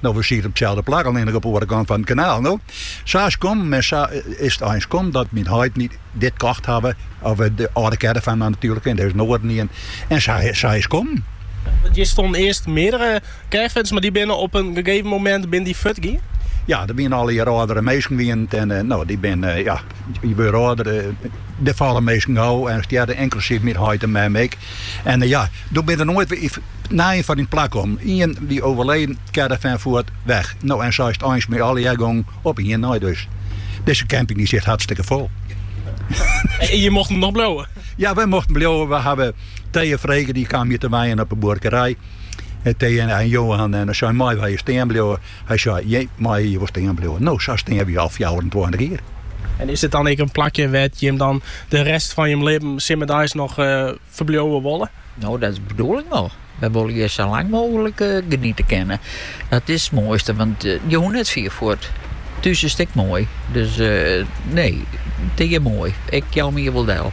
No wy sieten op itselde plak, allinnich op 'e oare kant fan it kanaal. No, sa is kommen, mar sa is it eins kommen dat myn heit my dit kocht hawwe, of de âlde caravan dan natuerlik, en der is no wer in nijen. En sa is kommen. Want hjir stonden earst meardere caravans, mar dy binne op in gegeven momint binne dy fuort gien? Ja, der wiene allegear âldere minsken wiene it en no dy binne, ja, je wurde âlder, der falle minsken wei en stjerre, inklusyf myn heit en mem ek. En ja, doe binne der noait wer nije foar yn plak kommen. Ien wie oerleden, caravan fuort, weg. No en sa is 't eins mei allegear gongen op ien nei dus. Dizze camping dy siet hartstikke fol. En je mochten nog bliuwen? Ja, wy mochten bliuwe. We hawwe Thea frege, dy kaam hjir te wenjen op 'e buorkerij. Thea en Johan en sei meie wy hjir stean bliuwe. Hy sei, Jim meie hjir wol stean bliuwe, no sa stean we hjir al fjouwerentweintich jier. En is dit dan ek in plakje wêr't jim dan de rest fan jim libben simmerdeis noch ferbliuwe wolle? No, dat is de bedoeling wol. Wy wolle hjir sa lang mooglik geniete kinne. Dat is it moaiste, want je hoecht net fier fuort. Thús is it ek moai. Dus nee, it is hjir moai. Ik jou my hjir wol del.